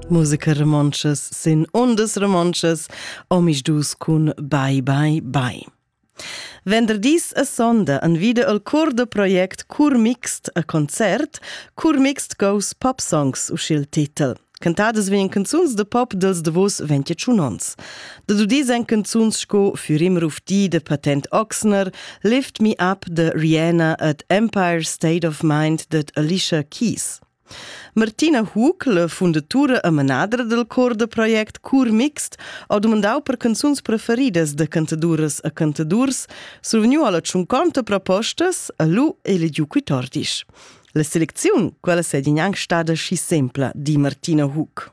Musica romontschas sin ondas romontschas, omis dus cun Bye Bye Bye. Venderdis a sonda an vida al cor da project Curmixt a concert, Curmixt Goes Pop Songs uschil titel. Cantadas vien canzuns de pop dels davos 21 ons. Da dudis en canzuns sco Furim Rufti de Patent Oxner, Lift Me Up de Rihanna et Empire State of Mind de Alicia Keys. Martina Hug, fundatura e manadra dal cor da project Cur Mixt, ha dumandau per canzuns preferidas da cantaduras e cantadurs, survegniu alla tschunconta propostas e lu elegiu quitordis. La selecziun, quella sei gnanc stada schi sempla, di Martina Hug.